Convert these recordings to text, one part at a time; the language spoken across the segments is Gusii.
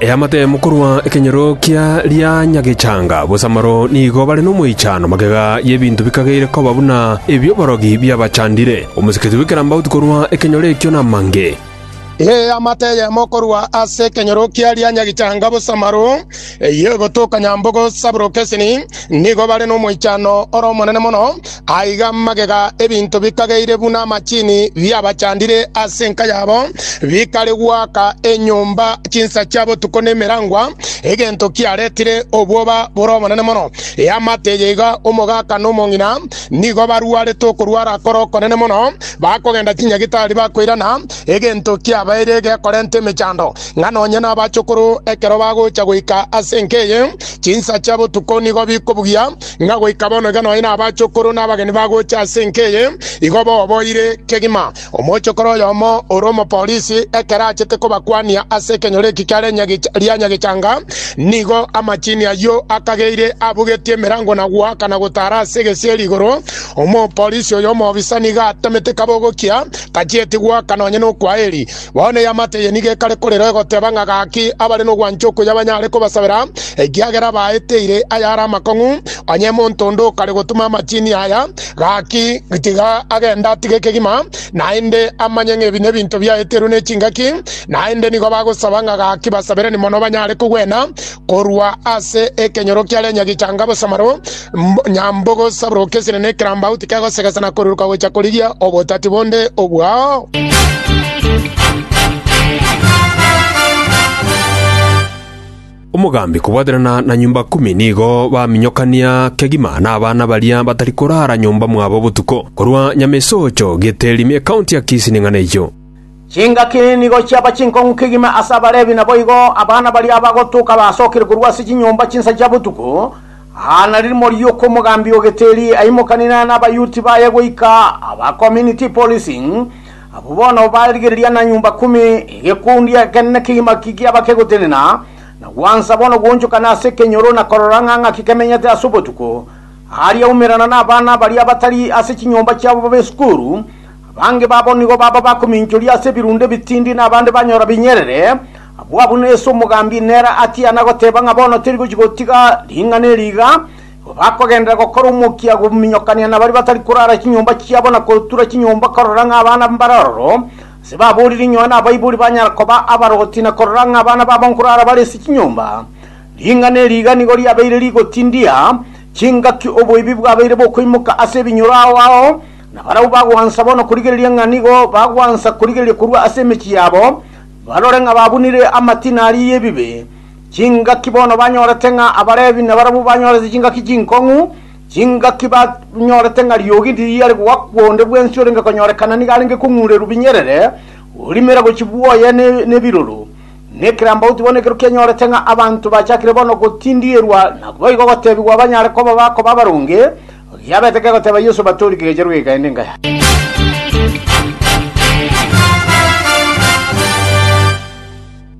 Eamatemu korwa ekenyoro kia rianyagechanga bosamaro nigo bare nomoichano, magega y'ebinto bikageire koba buna ebi'oborogi biabachandire. Omosikiti bw'ekerambauti korwa ekenyoro ekio namange. Eamate eyemo korwa ase ekenyoro kia rianyagechanga bosamaro, eyio egotoka nyambogo sabro kesini, nigo bare nomoichano ore omonene mono. Aiga magega ebinto bikageire buna amachini biabachandire ase enka yabo, bikare gwaka enyomba chinsa chia botuko na emerangwa, egento kiaretire obwoba bore obonene mono. Eamate eye iga omogaka na omong'ina nigo barwarete okorwara kore okonene mono, bakogenda chinyagitari bakoirana, egento kiabaire gekorenta emechando, ng'a nonye nabachokoro ekero bagocha goika ase enka eye, chinsa chia botuko nigo bikobugia Ng'a goika bono iga nonya nabachokoro nabageni bagocha ase enka eye igo boboire kegima. Omochokoro oyomo ore omopolisi ekero achete kobakwania ase ekenyoro eki kia Renyagecha- ria Nyagechanga, nigo amachini ayio akageire abugetie emerango na goakana gotara ase egesieri igoro. Omopolisi oyo omoobisa nigo atemete kabogokia, tachieti goaka nonya nokwaeri. Bono eamate eye nigo ekare korerwa egoteba ng'a gaki abare nogwancha okuya banyare kobasabera, ekiagera baeteire ayare amakong'u. Onye monto onde okare gotuma amachini aya, gaki tiga agende atige ekegima, naende amanye ng'a ebi nebinto biaeterwe ne chingaki, naende nigo bagosaba ng'a gaki basaberani mono banyare kogwena Korwa ase ekenyoro kia renya gichanga bosamaro, nyambogo saburoka esine na ekerambau tikegosegesa na koruruka gocha korigia obotati bonde obwao. Omogambi kobwaterana na nyomba kumi nigo baminyokania kegima nabana baria batari korara nyomba mwabo botuko, korwa Nyamesoocho, Giteri, me ekaunti ya Kisii ning'ana eyio. Chingaki nigo chiaba chinkong'u kegima ase Abalevi, naboigo abana baria abagotoka basokire korwa ase chinyomba chinsa chia botuko, aa na ririmo ri'okomogaambia ogeteri aimokanire n'abayuti baye goika aba community policing, abwo bono barigereria na nyomba kumi, egekundi ekenene kegima kiaba kegotenena na gwansa bono gwoonchokana ase ekenyoro na korora ng'a ng'aki kemenyete ase obotuko. Aria aumerana nabana baria batari ase chinyomba chiabo b'esukuru, Abange babo nigo baba bakominchoria ase ebirunde ebitindi na abande banyora binyerere. Agwo abwo nere ase omogambi, nere atiana goteba ng'a bono tori gochia gotiga ring'ana eri iga. Igo bakogenderera gokora omokia gominyokania na baria batari korara chinyomba chiabo na kotura chinyomba korora ng'a abana mbare ororo. Ase baborire inyoa nabaibori banyara koba abaroti na korora ng'a abana babo nkorara bare ase chinyomba. Ring'ana eri iga nigo riabeire rigotindia chingaki oboibi bwabeire bokoimoka ase ebinyoro ao ao. Na barabwo bagwansa bono korigereria ng'a nigo bagwansa korigereria korwa ase emechie yabo, barore ng'a babunire amatina aria y'ebibe, chingaki bono banyorete ng'a Abalevi nabarabwo banyorete chingaki chinkong'u, chingaki banyorete ng'a riogi tiriare goakwa onde bwensi orenge konyorekana nigo arenge kong'urerwa binyerere, orimera gochia bwoye nebiroro. Na ekerambauti bono ekero kianyorete ng'a abanto bachakire bono gotindierwa, naboigo gotebigwa banyare koba bakoba abaronge, Oyio abete kegoteba Yeso, Batori kegecha rwegeka ende nkaya.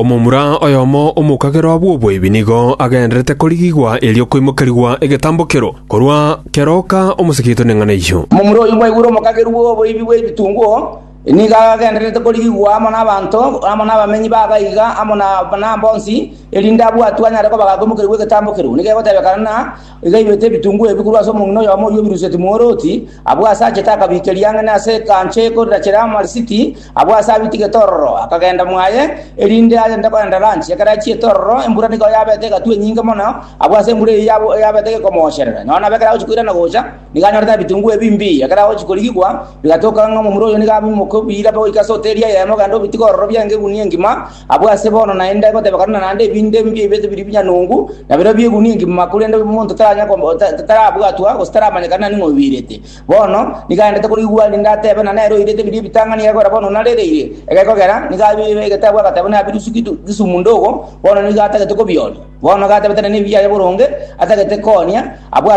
Omomura oyomo omokagerwa bw'oboibi nigo agendererete korigigwa erio koimokerigwa egetambokero korwa keroka omoseketo neng'ana eyio. Omomura oyio mwaigure omokagerwa bw'oboibi bw'ebitunguo nigo agendererete korigigwa amo nabanto, amo nabamenyi b'aba iga, amo na bonsi, erinde abwatwe anyare kobaga koimokerigwa egetambokero. Nigo egotebekana na. Igairwete ebitunguo ebi korwa ase omong'ina oyomo oyio obirusetie mworooti, abwo aase achete akabiikeria ang'e na ase ekancho ekorachera amarisiti, abwo aase abitigete ororo akagenda mwaye, erinde agende kogenda ranchi. Ekero achiete ororo embura nigo yabete egatwa enyinge mono, abwo ase embura eyio yabo- yabete gekomoocherera. Nonya nabo ekero agochia koirana gocha, nigo anyorete na ebitunguo ebi mbii, ekero agochia korigigwa, bigatoka ng'a omomura oyo nigo abimoka obiire goika ase hoteri eyemo ogende obitige ororo biaenge egunia engima, Abwo ase bono naende goteba korende naende ebinto ebi biaibete biria binyanungu, na birobio biegunia engima, korende omonto taranya kom- ta- ta- tarabwatwa, gose taramanyekana nani ng'a obiirete. Bono nigo aendete korigwa aa rinde atebe, na nere oirete biria ebitang'ani egekogera bono narereire, egekogera nigo abiirire egeteebo agateba buna abirusu gitu gisumundo ogo, bono nigo atagete kobioria. Bono gatebete nere nebiyaye boronge, atagete koonia, abwo ase.